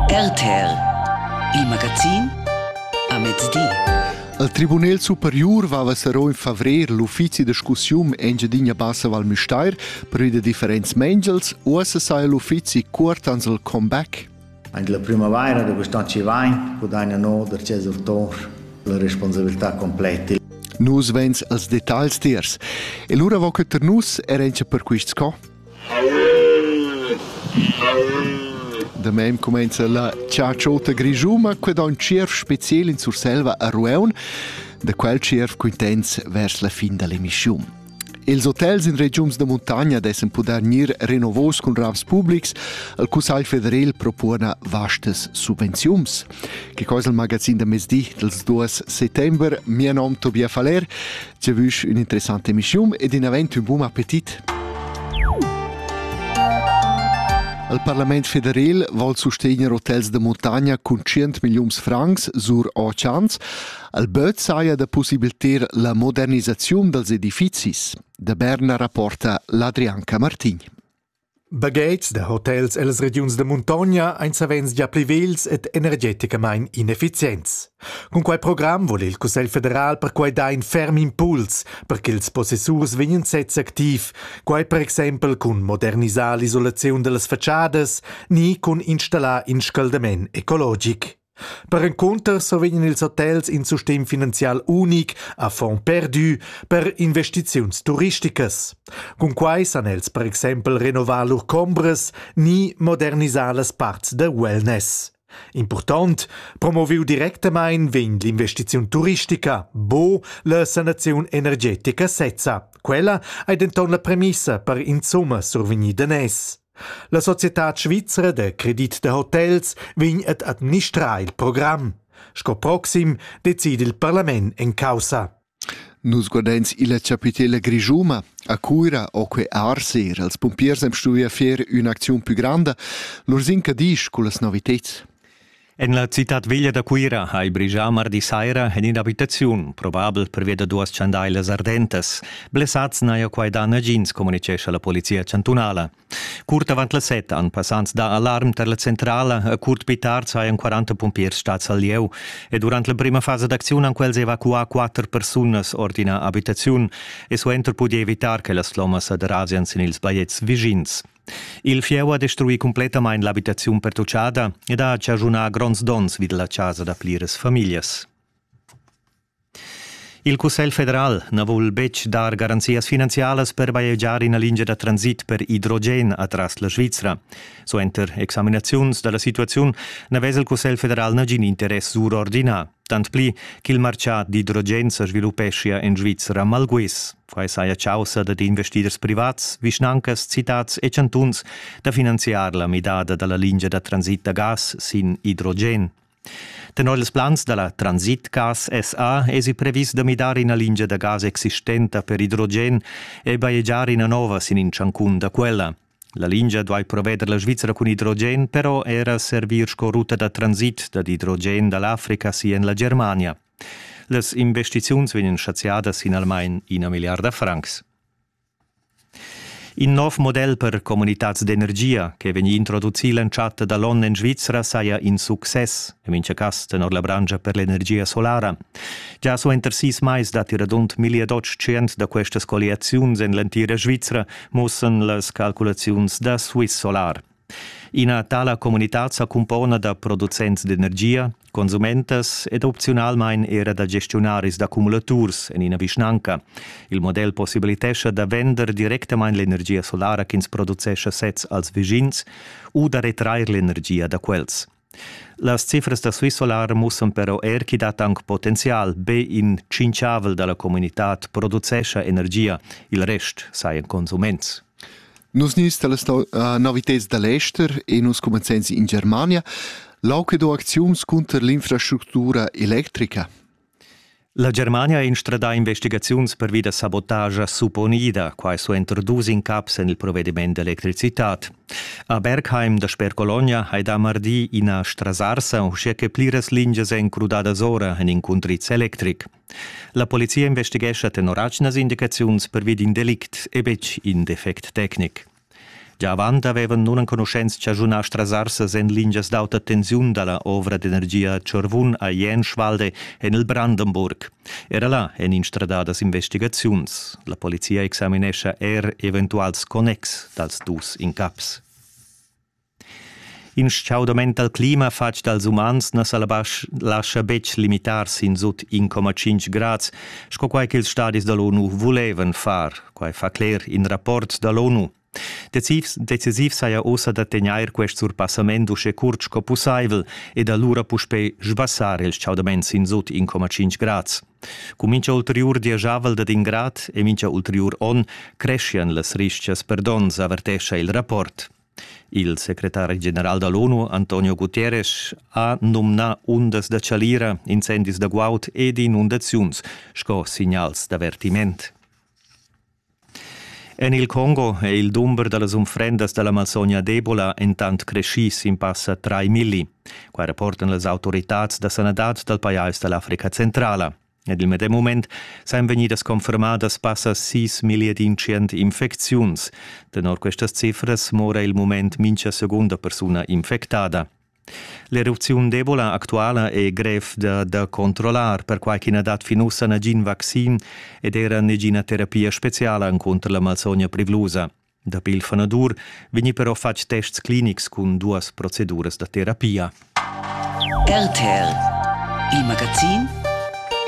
RTR, il magazin a mezdi. Al Tribunal superior vava sarò in favrer l'uffizi da discussiun Engiadina Bassa Val Müstair per i da differents mengels o se sai l'uffizi cuort ans il comeback? Anche la primavaira da quest'anno ci vai, guadagna no der ces urtor la responsabilità completa. Nus vens als detagls tiers. E lura vo que ter nus er encha per quist sco? Da mem cumenza la ciaciota grischuma que da ün tschierv speciel in Surselva a Rueun, da quel tschierv quintens vers la fin da l'emischiun. Ils hotels in regiuns da muntagna dessen puder gnir renovos cun ravs publics, al Cussagl federal propona vastas subvenziums. Que cosa il magazin da mezdi dels 2 settember, mia nom Tobias Faller, Giavüsch ün'interessanta emischiun ed in avent ün bun appetit. Il parlament federal vuol sustegner hotels da montagna cun 100 milliuns francs sur Ochans. Il böt saja da possibiliter la modernisaziun dals edifizis. Da Berna rapporta l'Adrianca Martin. Baghetgs da hotels ellas regiuns da muntogna ein savens gia pli vegls ed energeticamain inefficients. Cun quei program vul il Cussegl federal perquei dar in ferm impuls per ch'ils possessurs vegnan sezs activ, quai per exempel cun modernisar l'isolaziun dallas fatschadas ni cun installar in scaldament ecologic. Perencunter survegnan ils hotels in sustegn finanzial unic a fond perdu per investiziuns turisticas. Cunquai san els per exempel renovar lur chombras ni modernisar las parts da wellness. Impurtont, promoviu directamain vegn l'investiziun turistica, bo la sanaziun energetica sezza. Quella ei denton la premissa per insumma survegnir danès. La societad svizra da credit da hotels vegn ad administrar il program. Sco proxim decide il parlament en caussa. Nus guardains illa chapitela grischuma. A Cuira ho que arser els pumpiers am stuvia fer ün'acziun pü granda. Lur zinca disch cullas noviteds. En la citad veglia da Cuira ha il brigià mardi saira en in'abitaziun, probabel pervia da duas chandailas ardentas. Blessads n'haja quai dà nagins, communitgescha la polizia chantunala. Curt avant las set han passants dà alarm tar la centrala, e curt pli tard sajan 40 pumpiers stads al lieu. E durant la prima fasa d'acziun han quels evacuà quatter persunas ord ina abitaziun e suenter pudì evitar che las flommas sa derasian sin ils bajetgs vischins. Il fieu ha destruì cumplettamain l'abitaziun pertutgada ed ha chaschunà gronds donns vid la chasa da pliras famiglias. Il Cussegl federal na vul betg dar garanzias finanzialas per bajegiar ina lingia da transit per idrogen atras la Svizra. Suenter examinaziuns da la situaziun na vesa il Cussegl federal nagin interess surordinà, tant pli ch'il martgà d'idrogen sa sviluppeschia en Svizra malguis. Quai saja chaussa dad investiders privats, vischnancas, citads e chantuns da finanziar la midada da la lingia da transit da gas sin idrogen. Tenor ils plans da la Transitgas SA èsi previs da midar ina lingia da gas existenta per idrogen e bajegiar ina nova sin in tschancun da quella. La lingia duai proveder la Svizzera cun idrogen però era servir sco ruta da transit dad idrogen da l'Africa si en la Germania. Las investiziuns vegnan chaziadas in almain ina milliarda francs. In nov model per comunitads d'energia che vegn introducì l'entschatta da l'onn en Svizra saja in success, en mintga cas tenor la branscha per l'energia solara. Già suenter sis mais datti radund 1800 da questas colliaziuns en l'entira Svizra, mussan las calculaziuns da Swiss Solar. Ina tala communitad sa cumpona da producents d'energia, consumentas ed opziunalmain era da gestiunaris d'accumulaturs en ina vischnanca. Il model possibilitescha da vender directamain l'energia solara ch'ins producescha sez als vischins u da retrair l'energia da quels. Las cifras da Swiss Solar mussan però er ch'i dat anc potenzial. Be in tschinchavel da la communitad producescha energia, il rest sajan consuments. Nus nis da las uh, novitads da l'ester e nus cumenzains in Germania. L'auc do acziuns cunter l'infrastructura electrica. La Germania ha instradà investigaziuns pervi da sabotagia supponida, quai suenter dus incaps en il provediment d'electricitad. A Bergheim dasper Cologna hai dà mardi ina strasarsa, uschia che pliras lingias èn crudadas ora en in cundriz electric. La polizia investighescha tenor atgnas indicaziuns pervi d'in delict e betg in defect tecnic. Gia avant avevan nunenconuschents chaschunà strasarses en lingias d'auta tensiun da la ovra d'energia Chorvun a Jenschwalde en il Brandenburg. Era là èn instradadas investigaziuns. La polizia examinescha er eventuals connex dals dus incaps. In stgaudament dal clima fatg dals umans na sa lascha betg limitar sin sut in coma tschintg grads, sco quai ch'ils stadis da l'ONU vulevan far. Quai fa cler in rapport da l'ONU. Decisiv, decisiv saja ossa da tegnair quest surpassament uschè curt sco pussaivel ed alura puspè sbassar il stgaudament sin sut in coma tschintg grads. Cun mincha ulteriur dieschavel dad in grad e mincha ulteriur onn creschian las ristgas per donns, avertescha il rapport. Il secretari general da l'ONU Antonio Guterres ha nomnà undas da chalira, incendis da guaud ed inundaziuns sco signals d'avertiment. En il Congo è il dumber da las unfrendas da la malsogna d'Ebola entant creschì sin passa 3 milli. Quai rapportan las autoritads da sanadad dal pajais da l'Africa centrala. Ed il medem mument san vegnidas confermadas passa sis millier d'incient infecziuns. Tenor questas cifras mora il mument mincha segunda persuna infectada. L'erupziun d'Ebola actuala è grev da, da controllar, perquai ch'i na dat fin ussa nagin vaccin ed era negina terapia speciala encunter la malsogna privlusa. Dapi il fanadur vegni però fatg tests clinics cun duas proceduras da terapia. RTL, il magazin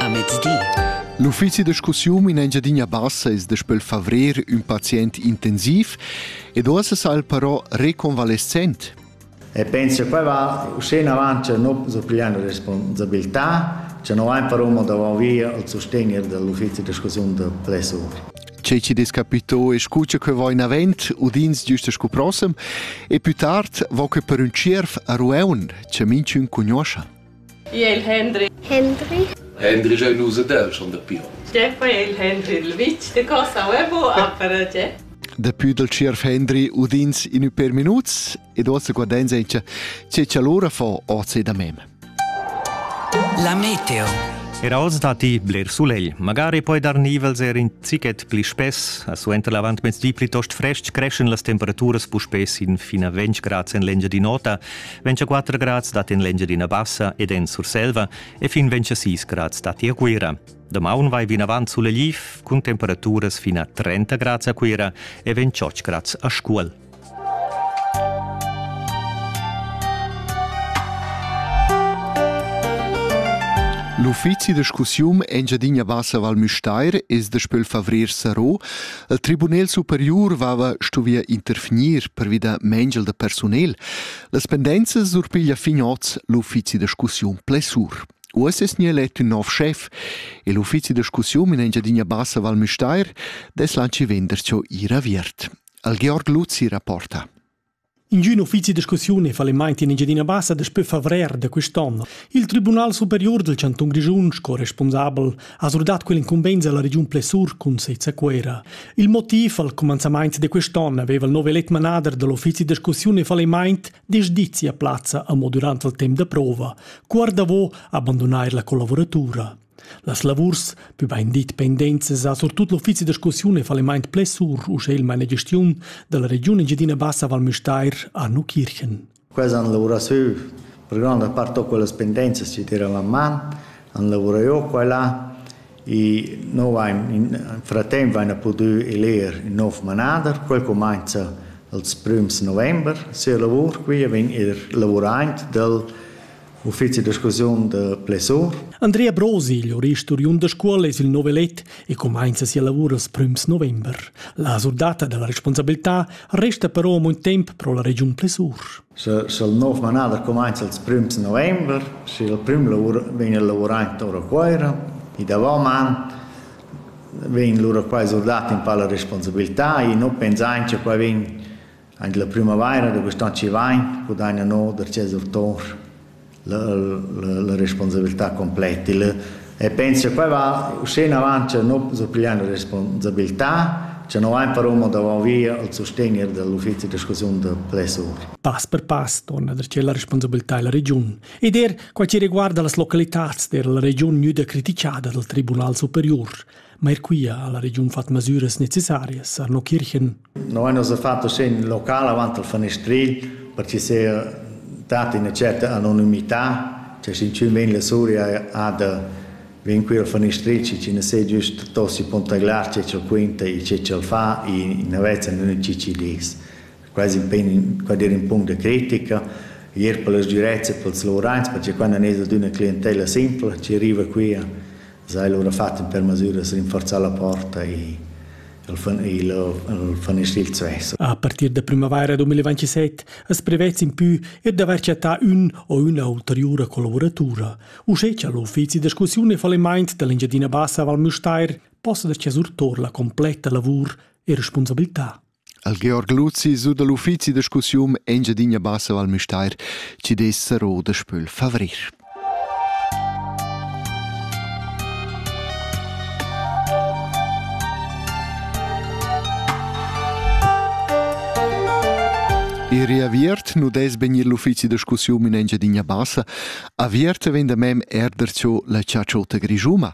a mezdi. L'uffizi da discussiun in Engiadina Bassa es daspel favrer ün pazient intensiv ed uossa sal però reconvalescent. E pensi a quei vart, uschè in avant cha no surpiglian la responsabilità, cha no vain però mo davant via al sustegner dell'uffizi discussiun da plessur. Tgei che des capito e scu che quei va in avent, udins giusto scu prossem, e più tard va que per un tschierf a Rueun, che minchun cugnoscha. Jel Hendry. Hendry. Hendry è l'us del schon da Pion. Stefan è il Hendry il vitg de Cosa Uebo a Parace. Dapi dal CIRF Hendry udins in per minuts ed ossa guardenza è che c'allora fa oce da mem. La meteo. Era oz datti bler sulegl, magari poi dar nivels er in zichet pli spess, a suenter l'avantmezdi plitost frestg creschen las temperaturas puspè sin fina 20 grad en l'engia di nota 24 grads dat en l'Engiadina Bassa ed en Surselva e fin 26 grads datti a Cuira. Damaun vai vinavant sulegliv cun temperaturas fin a 30 grads a Cuira e 28 grads a Scuol. L'uffizi da scussium Engiadina Bassa Val Müstair es daspö il favrer saro Il tribunel superior vava stuvia interfinir pervi da mengel da personel. Las pendenza surpiglia fin oz l'uffizi da discussiun plessur. Uoss es nie let ün nov chef e l'uffizi da discussiun in Engiadina Bassa Val Müstair des lanci venderscho ir aviert. Al Georg Luzzi rapporta. Ingün uffizi da discussiun è fallimaint in Engiadina Bassa daspö favrer da quist'on. Il Tribunal superior del Chantun Grischun, sco responsabel, ha surdat quell'incumbenza alla Region Plessur cun sez a Cuera. Il motiv al comenzamaint de quest'on aveva il nov elet manader dell'uffizi da discussiun e fallimaint desdizi a plazza a mo durant il temp da prova, cuor davo abbandonar la collaboratura. Las lavurs pü baindit pendents sa surtut l'uffizi da scoussiun e fallimaint plessur, uschè il mainagestiun da la Regiun Engiadina Bassa Val Müstair Anu Kirchen. Questa han lavurà sü, per granda part ho quellas pendenzas ci tira la man, han lavurà io qua là, e noi vain, in fratemp vaina pudü eler in nov manader, quel cumainza als prüms november sia lavur qui e vegn eir lavuraint dal Uffizi discussiun da Plessot. Andrea Brosi, jurist oriund da scuola es il novelet e cumainza sia lavur als prüms november. La surdata da la responsabilità resta però moin temp pro la regiun Plessur. Sel nov manada cumainza als prüms november, si il prüm lavur vegna lavurant ora Cuoira, i davant man vegn lura qua surdat in pa la responsabilità e non pensain che qua vegn Aint la prümavaira da quist an chi vain pudaina no darcheu surtour la la la responsabiltà completa il e penso cha quai va uschè inavant cha no s'o pigliaina responsabiltà, cha no vain però amo davant via al sustegner da l'uffizi da scasiun da plessur. Pass per pass torna darcheu la responsabiltà illa regiun ed eir quai chi riguarda las localitats d'eira la regiun gnüda critichada dal Tribunal superiur. Ma er quia ha la regiun fat masüras necessarias, Arno Kirchen. Noi nos ha fatto segn local avant al fanestrigl per ci sia data una certa anonimità, cioè sin ciù men la Suria ha da ven qui al fanestrigl ci ne sei giust tossi pontaglar ce c'el quinta e ce c'el fa e navezza non ci ci dis. Quasi impegn quadir un punct de critica ier per las durezze per els lorans perché quando ne d'una clientela simple ci arriva qui S'ha el lura fat in per masüras rinforzà la porta e el fan il el fanestil svess. A partir da primavaira 2027 as prevetz impü er d'avair chattà ün o üna ulteriura collavuratura. Uschè cha l'uffizi da discussiun e fallimaint da l'Engiadina Bassa Val Müstair possa dar surtor la completa lavur e responsabilità. Al Georg Luzi su dal uffizi da discussiun Engiadina Bassa Val Müstair ci dess saro da spöl favrir. Ir aviert nu des vegnir l'uffizi da discussiun in Engiadina Bassa, aviert vegn da mem erder cho la ciaciota grijuma.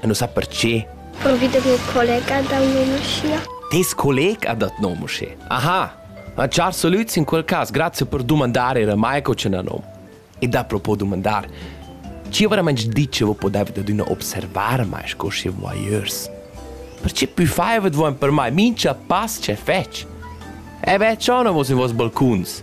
E nu sa perche. Provi da gnir collega dal nom uschia? Tes collega dat nom uschè. Aha! Ma char salüds in quel cas, grazia per dumandar era mai co c'è nom. E da propo dumandar, chi veramente dice vo podeva da d'una observar mai sco schi voyeurs? Perché pü faivat voen per mai mincha pass che fetch? E beh, ciò non vos in vos balcuns.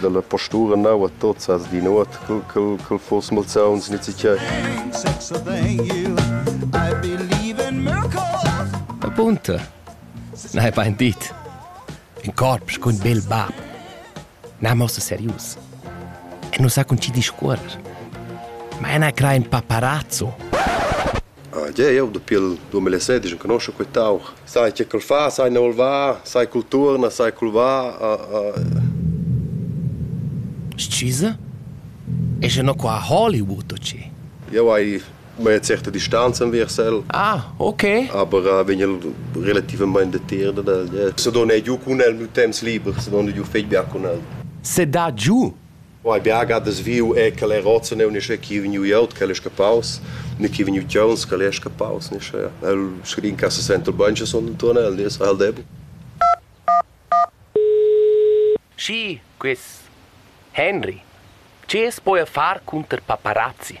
dalla postura naua tozas di nuot cul fors malsauns nizzichai. Apunta. Na hai bain dit. In corpus cun bel bab. Na mossa serius. E non sa con ci discuorer. Ma ena cra in paparazzo. Ah, yeah, eu dapi il 2016 enconoscho quest'aug. Sai che ch'el fa, sai ne voul va, sai cul turna, sai cul va. Ah, ah. Scusa? E se no qua a Hollywood o ci? Eu hai mea certa distanza versel. Ah, ok. Aber uh, vegn el relativament detiert del. Yeah. Se dona giù cun el miu temps liber, se dona giù fetg bia cun el. Se da giù? Oi bia gadas viu è che el è rozza neu nische chi vegniu glieud che el è scappaus, ne chi vegniu tgeuns che el è scappaus nische. El scri in casa senta il banche son intuorn el, nies ha el debbo. Schi, quis Henry, che es poi a far cunter paparazzi?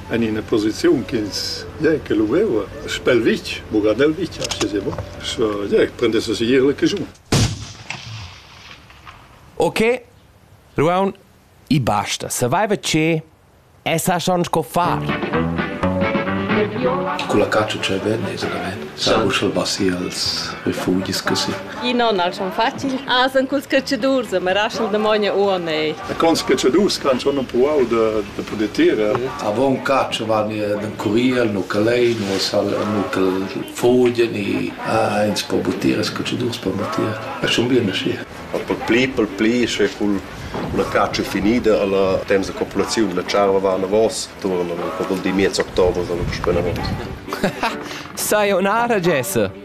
en ina posiziun ch'ins ja che luveva spel vitg, buca nel vitg, aschia sema, so ja prendesse segir la caschun. Ok, Ruaun, i basta, saveva che e sa schon sco far. Con la caccia che venne, esattamente, sa uschel bassi als refugis così. I non al son facil. Ah, san culs catschadurs, ma raschel damogna uonei. E cons catschadurs ch'han schon empruau da da poder tirer. Avon catsch van den curiel, no calei, no sal, no cal fogien e ah, ins po butir, es catschadurs po butir. E schon bien aschi. Per pli, per pli, sche cul la caccia finida alla temps de popolaziun la charva va anavos, turna, po vol di miez october, sono spena avos. Sai un'ara Jesse?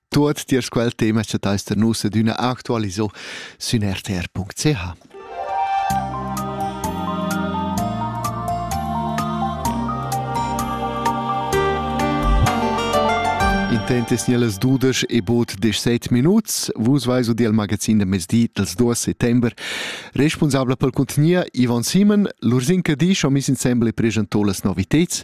Tuot tiers quel tema cha teis da nus ed üna actualiso sün rtr.ch. Intent es nielas dudesch e bod desset minuts. Vus vais u del magazin da mezdi dels 2 settember. Responsabla pel contenier Ivan Simon, l'Ursin Cadisch ho miss insembel e preschantò las noviteds.